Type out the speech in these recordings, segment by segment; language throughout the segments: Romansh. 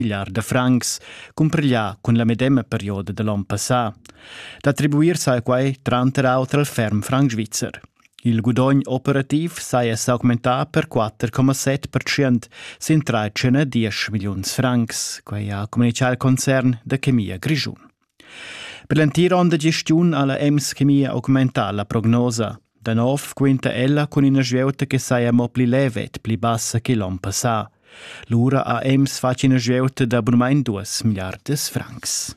pigliar da francs, cumpriglià cun la medema perioda de l'on passà. D'attribuir sai quai tranter auter al ferm franc svizzer. Il gudogn operativ saja s'augmentà per 4,7% sin 13,10 milliuns francs, quai ha communichà il concern da Chemia Grischun. Per l'entira onda gestiun ha la EMS Chemia augmentà la prognosa. Da nov quinta ella cun ina svieuta che saja mo pli leve e pli bassa che l'onn passà. Lura ha EMS fatg ina svieuta da bunmain duas miliardas francs.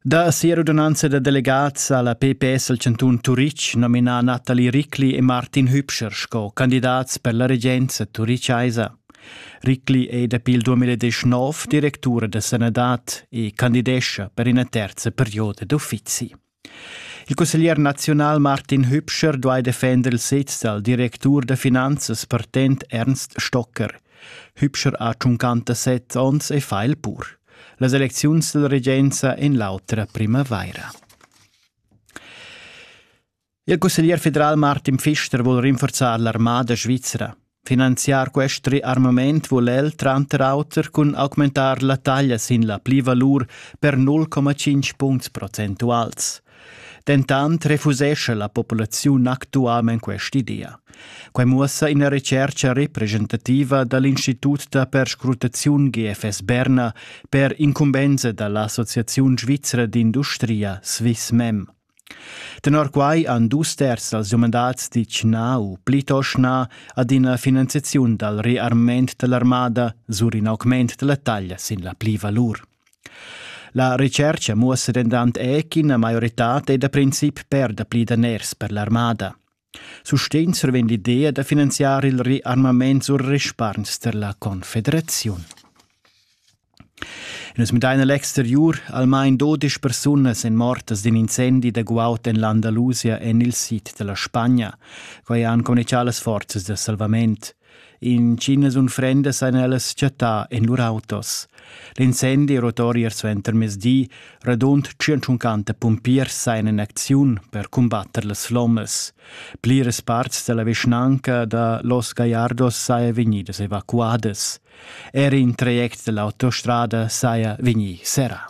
Da sia rudonanza da delegats ha la PPS al cantun Turitg nominà Nathalie Ricli e Martin Hübscher sco candidats per la regenza turichaisa. Ricli è dapi il 2019 directura da sanadad e candidescha per ina terza perioda d'uffizi. Il cusseglier nazional Martin Hübscher duai defender il sez dal directur da finanzas partent Ernst Stocker. Hübscher ha 57 onns e fa il pur. Las elecziuns della regenza in l'autra primavaira. Il cusseglier federal Martin Pfister vul rinforzar l'armada svizra. Finanziar quest riarmament vul el tranter auter cun augmentar la taglia sin la plivalur per 0,5 puncts procentuals. Dentant refusesce la populaziun actualment quest'idea. Quai muossa ina recerca representativa da l'Institut da perscrutaziun GFS Berna per incumbensa da l'Associaziun svizra d'industria Swissmem. Tenor quai han dus terz dals umandats ditg na u plitost na ad ina finanziaziun dal rearmament da l'armada sur in augment da la taglia sin la plivalur. La retschercha muossa dentant er ch'ina maioritad è da princip per dapli daners per l'armada. Sustegn survegn l'idea da finanziar il rearmament sur respargns per la Confederaziun. Nus midain l'exteriur almain dodisch persunas en mortas d'in incendi da guaud en l'Andalusia en il sid da la Spagna. Quai han communichà las forzas da salvament. Intschinas unfrendas ein ellas chattà en lur autos. L'incendi rotori er suenter mezdi, radund 150 pumpiers sein in acziun per combatter las flommas. Pliras parts della vischnanca da Los Gallardos saia vegnidas evacuadas. Er in traject dell'autostrada saia vegni serrà.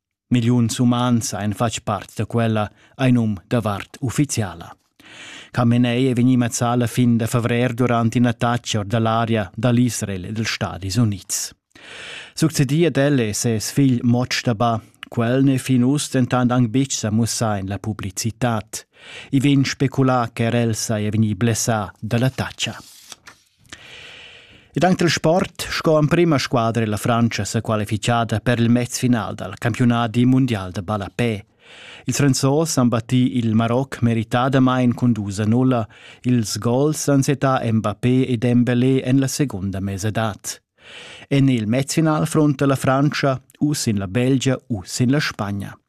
Milliuns umans ein fatg part da quella, ein um da vart ufficiala. Camenei è vegnì mazzà la fin da favrer durant ina taccia or da l'aria dall Israel e dals Stadis Unids. Succedì ad el è ses figl Moctaba. Quel n'è fin uss dentant anc betg sa mussà en la publicitad. I vegn speculà che er el saja vegnì blessà da la taccia. Ed anc dal sport sco emprima squadra è la Frantscha sa qualifichada per il mezfinal dal campiunadi mundial da ballapè. Ils Franzos han battì il Maroc meritadamain cun dus a nulla. Ils gols han setà Mbappé e Dembélé en la segunda mesadad. En il mezfinal fronta la Frantscha u sin la Belgia u sin la Spagna.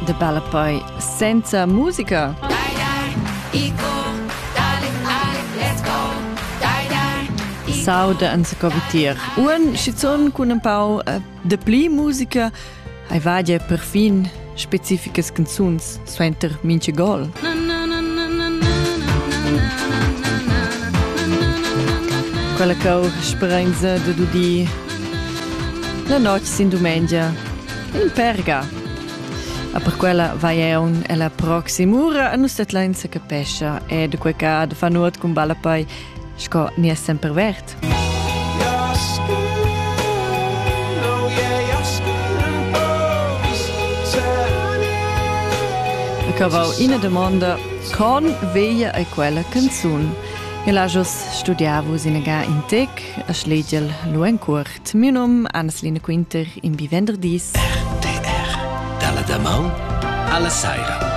De Ballapei senza musica. Sauda an se covitier. Un schizun cun un pau eh, de pli musica hai vadia perfin specificas canzuns suenter minche gol. Quella cau sperenza de dudi la notg sin dumengia Il perga. A per quella vai eun ella proximura a nus tetlein se capescha e de quei ca de fa nuot cun balla poi sco ni è sempre vert. Cavau ina domanda con veglia è quella canzun. El ha jos studiavus in ga in tec a schlegel lu en cur. Miu num Anneslina Quinter, in bi venderdis. RTR dalla damaun alla saira.